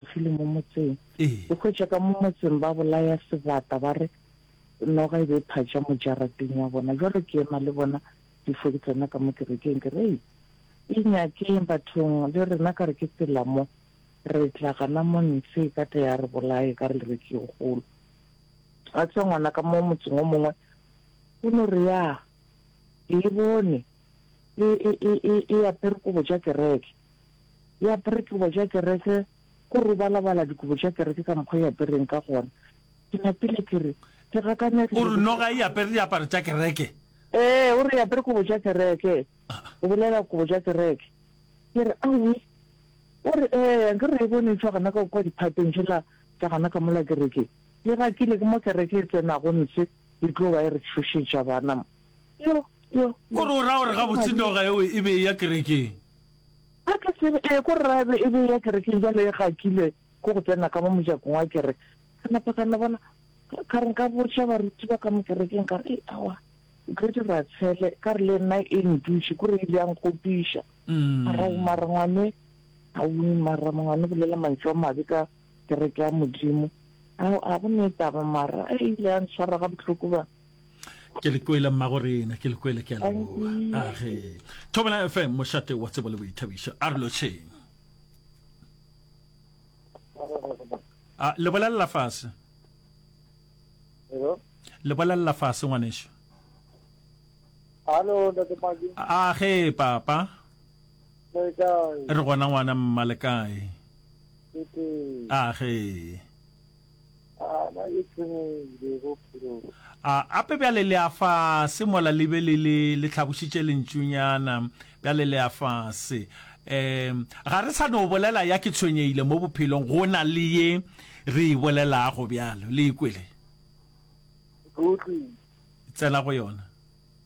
File mo motseng. O hwetša ka mo motseng ba bolaya sebata ba re noga e be e phatša mo jarateng ya bona. Jwale ke ema le bona difo ke tsena ka mo kerekeng ke re, Ei, inyakeng bathong le rena ka re ke tsela mo, re tla gana mo ntshe e ka tla ya re bolaya e ka re re ke e kgolo. Wa tseba ngwana ka mo motseng o mongwe o no re, Ya, ke e bone e, e, e, e, e apere kobo tša kereke. E apere dikobo tša kereke, go robalabala dikobo tša kereke ka mokgwa e apereng ka gona. Ke napile ke re, Ke gakane ke. O re noga e apere diaparo tša kereke? Ee, o re e apere kobo tša kereke. O bolela kobo tša kereke. Ke re, Aowi. O re, Ee, nke re e bone e tšwa gona ka kua diphateng tšela tša gona ka mola kerekeng. Ke gakile ke mo kereke e tsenago ntshe. E tlo ba e re tšhošetša bana. Yo, yo, Ko re o ra gore gabotse noga eo e be e ya kerekeng? A ke tsebe, ee, ko re ra ebe e be e ya kerekeng, bjale e gakile ko go tsena ka mo mojakong wa kereke. Ka napa ka no bona, ka re nka botša baruti ba ka mo kerekeng, ka re, ee, aowa, Grady ra tshele, ka re le nna e ntutše, ko re ile ya nkgopiša. Mara, mara ngwane, aowi, mara ngwane o bolela mantšu a mabe ka. kereke ya Modimo. Ao a go ne taba mara a ile a ntshwara ga bohloko ba. Ke le kwele mma go rena, ke le kwele ke a leboa. A ge. Thobela FM mošate wa tsebo le boithabišo. A re lo tšheng. A le bolelela fase. Hello. Le bolelela fase ngwaneso. Hello, Ntate Maki. A ge papa. Re gona ngwana mma le kae? A ge. A ape bjale le a fase mola le be le le le tlhabošitše lentšunyana bjale le a fase. Um ga re sa no bolela ya ke tshwenyehile mo bophelong go na le ye re e bolelago bjalo le e kwele. Tsena go yona.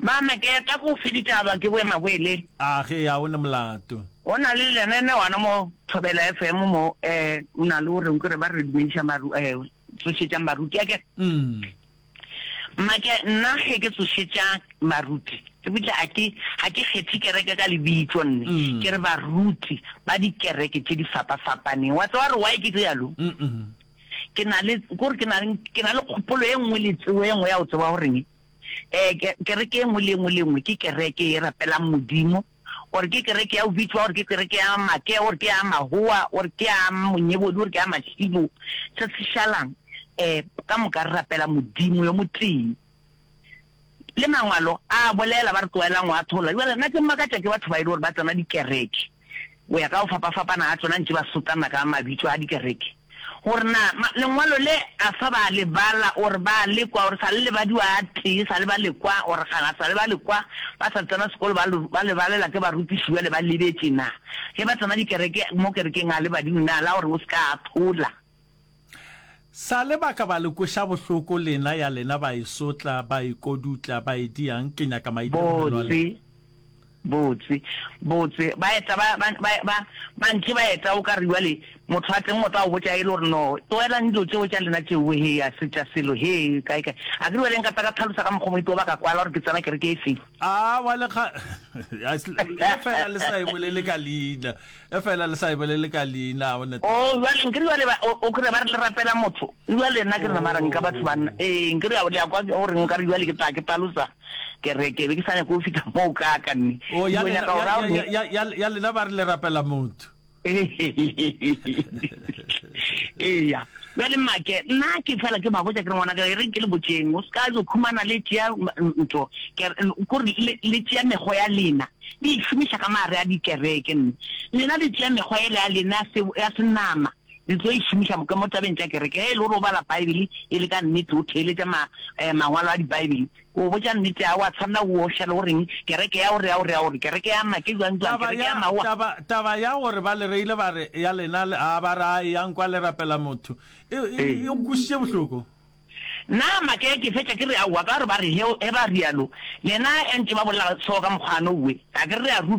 Mama, ke eta go fe ditaba ke boema boele. A ge ya o ne molato. Go na le lenanewana mo Thobela FM mo e o na le o reng kore ba re dumediša maru e tsošetšang baruti a ke Mma, ke nna ge ke tsošetša baruti ke botša a ke ga ke kgethe kereke ka lebitso nne ke re baruti ba dikereke tše di fapafapaneng wa tsewa gore why ke realo? Ke na le kore ke na le kgopolo e nngwe le tsebo e nngwe ya go tseba goreng Kereke ye nngwe le ye nngwe le ye nngwe ke kereke e rapelang Modimo, gore ke kereke ya go bitšwa, gore ke kereke ya Makea, gore ke ya Mahowa, gore ke ya Monyebodi, gore ke ya Mashilo, se se šalang, um ka moka re rapela Modimo yo motee. Le Mangwalo a bolela, ba re tlogelang go atholola. Jwale nna ke makatšwa ke batho ba e le gore ba tsena dikereke. go ya ka go fapafapana ga tsona, ntše ba sotana ka mabitso a dikereke gore na lengwalo le a sa ba le bala or ba le kwa or sa le lebadiwa a tee sa le ba le kwa or ga sa le ba le kwa ba sa tsena sekolo ba ba le balela ke barutiši jale ba lebetse na ge ba tsena dikereke mo kerekeng a le badimo na la gore o se ka a thola Sa le ba ka ba le kweša bohloko lena ya lena ba e sotla, ba e kodutla, ba e diang, ke nyaka maitemogelo a lena. Botse, botse, botse, ba eta ba, ba, ba, ba, ba ntše ba eta, o ka re bjale motho wa teng o tla o botša e le gore, No, tlogelang dilo tšeo tša lena tšeo, hee, a se tša selo, hee, kae, kae. A ke re bjale nka tla ka tlhalosa ka mokgwa o mongwe peo ba ka kwala gore ke tsena kereke e feng. Aowa, le kga, le fela le sa e bolele ka leina. Efela le sa e bolele ka leina. O ne. Oo, bjale, nke bjale ba, o, o kre ba re le rapela motho. Bjale nna ke re, Mara nka batho ba nna. Ee, nke bjale, le a kwa, gore nka re bjale ke tla, ke talosa. Ke re, ke be ke sa nyake go fihla moo kaaka, mme Oo, ya lena, ya, ya, ya, ya, ya, ya lena ba re le rapela motho. Eya. Bjale, mmake, nna ke fela ke ba botša, ke re, ngwanaka, e reng ke le botšeng, o se ka yo khumana le tšea, ntho, ke re, kore le, le tšea mekgo ya lena. le išomiša ka maare a dikereke. Mme lena le tšea mekgwa yela ya lena ya se, ya senama, le tlo e šomiša mo, mo tabeng tša kereke. Ge e le gore o bala Baebele e le ka nnete, o theeletša ma, eh, Mangwalo a Dibaebele, o botša nnete, a wa tshwanela o oša le go reng, kereke ya gore, ya gore, ya gore, kereke ya ma, ke bjang, bjang, Taba kereke ya, ya maowa. taba, taba ya gore ba le reile ba re, ya lena, le, a ba re, a eyang kwa le rapela motho, e, e, Ee. e nkwešiše bohloko. Na make ke fetša ke re aowa ka gore ba re he ba rialo le na entše ba bolela so ka mokgwano we a ke re re a rutwa.